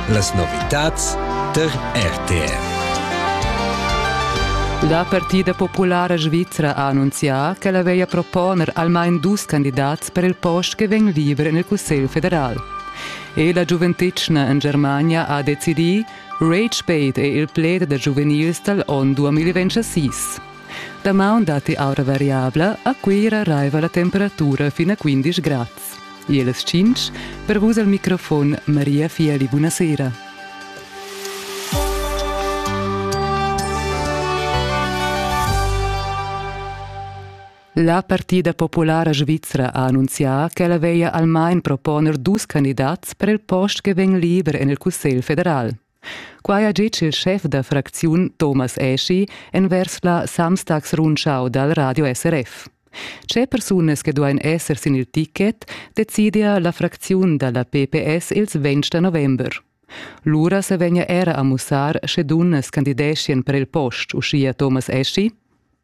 Las novitads tar RTR. La partida populara svizra ha annunzià ch'ella veglia proponer almain dus candidats per il post che vegn liber en il Cussegl federal. E la giuventetgna en Germania ha decidì, Rage Bait è il pled da giuvenils dal onn 2026. Damaun datti aura variabla, a Cuira arriva la temperatura fino a 15 grads. E las tschintg per vus al microfon Maria Fieli, buonasera. La partida populara svizra ha annunzià ch'ella veglia almain proponer dus candidats per il post che vegn liber en il Cussegl federal. Quai ha ditg il schef da fracziun Thomas Eschi envers la Samstagsrundschau dal Radio SRF. Tge persunas che duain esser sin il ticket decidia la fracziun da la PPS ils 20 da november. Lura se vegna era a mussar sche dunnas candideschien per il post, uschia Thomas Eschi.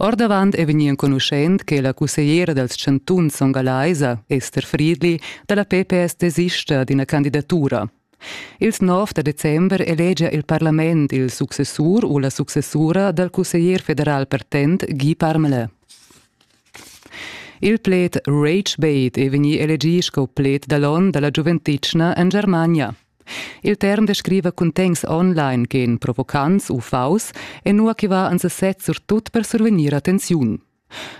Ordavant è vegnì enconuschent che la cussegliera dals chantuns songalaisa, Esther Friedli, da la PPS desista d'ina candidatura. Ils 9 da december elegia il parlament il successur u la successura dal cusseglier federal pertent Guy Parmelin. Il pled Rage Bait è vegnì elegì sco pled da l'on da la giuventitna en Germania. Il term descriva cuntegns online che èn provocants u faus e nua che va ans sez surtut per survegnir attenziun.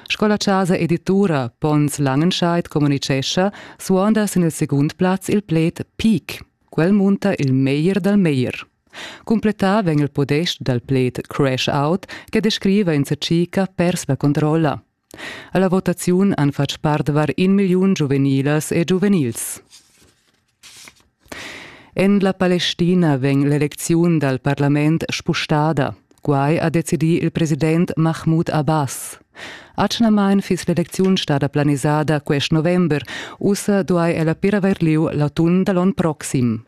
Sco la chasa editura Pons Langenscheid communitgescha, suonda sin il segund plaz il pled peak. Quel munta il meglier dal meglier. Cumplettà vegn il podest dal pled crash out che descriva in circa pers la controlla. Alla votaziun han fatg part var in milliun giuvenilas e giuvenils. En la Palestina vegn l'elecziun dal parlament spustada. Quai ha decidì il president Mahmoud Abbas. Atgnamain fiss l'elecziun stada planisada quest november, ussa duai ella per avair lieu l'atun da l'onn proxim.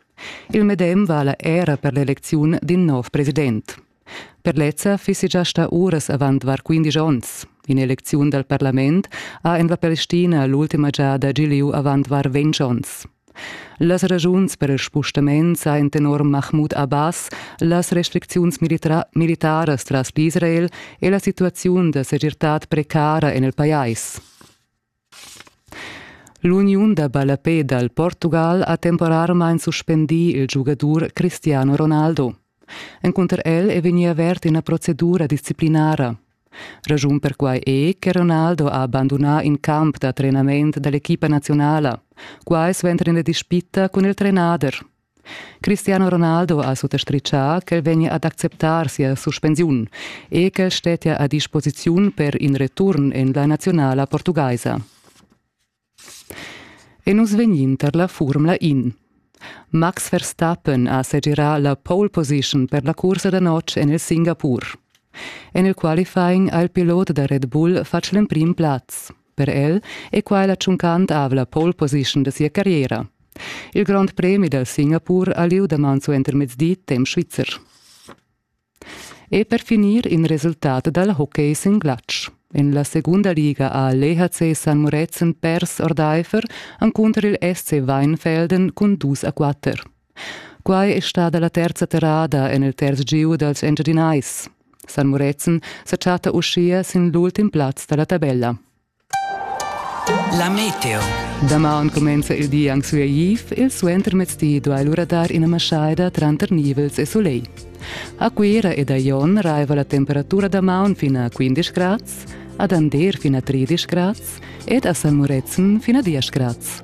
Il medem vala era per l'elecziun d'in nov president. Per lezza fissi già stà uras avant var quindisch onns. In'elecziun dal parlament ha en la Palestina l'ultima giada gì lieu avant var ventg onns. Las ragiuns per il spustament sajan tenor Mahmoud Abbas las restricziuns militaras tras l'Israel e la situaziun da segirtad precara en il pajais. L'uniun da ballapè dal Portugal ha temporarmain suspendì il giugadur Cristiano Ronaldo. Encunter el è vegnì avert ina procedura disciplinara. Raschun per quai è che Ronaldo ha bandunà in camp da trenament da l'equipa nazionala. Quai suenter ina dispita cun il trenader. Cristiano Ronaldo ha suttastritgà ch'el vegnia ad acceptar sia suspensiun e ch'el stettia a disposiziun per in return en la nazionala portugaisa. E nus vegnin tar la Formula In. Max Verstappen ha segirà la pole position per la cursa da notg en il Singapur. En il qualifying ha il pilot da Red Bull fatg l'emprim plaz. Per el è quai la tschuncantavla pole position da sia carriera. Il grond premi dal Singapur ha lieu daman suentermezdi temp svizzer. E per finir in resultat dal hockey sin glatsch. En la segunda liga ha l'EHC San Murezzan pers ordaifer encunter il SC Weinfelden cun dus a quatter. Quai è stada la terza terrada en il terz giu dals Engiadinais. San Murezzan sa chatta uschia sin l'ultim plaz da la tabella. La meteo. Damaun comenza il di anc sueiv, il suentermezdi duai lura dar ina maschaida tranter nivels e soleil. A Cuira ed a Jon raiva la temperatura damaun fin a 15 grads, ad Ander fin a 13 grads ed a San Murezzan fin a 10 grads.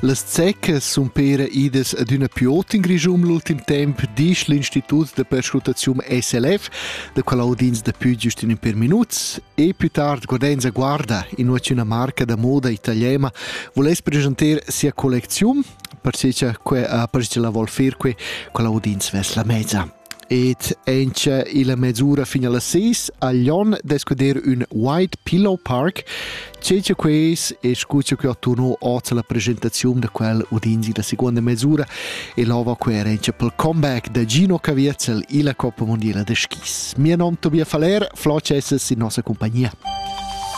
Las zeccas sun pera idas adüna più ot in Grischun l'ultim temp, disch l'Institut da perscrutaziun SLF, da qual audins daplü giust in ün per minuts, e più tard Godenza Guarda, innuaziuna marca da moda italiana, voless presentar sia collecziun, perché che ha perché la vol fer que, qual audins ves la mezza. Ed auncha illa mesura fin a las sis ha Jon d'scuder ün White Pillow Park. Cencha quais e scucha que attuorno hoz la presentaziun da quel udinzi da seguonda mesura e l'ova coerentscha pel comeback da Gino Caviezel illa Coppa Mondiala da skis. Mia nom Tobias Faller, Flo Cesses in nossa compagnia.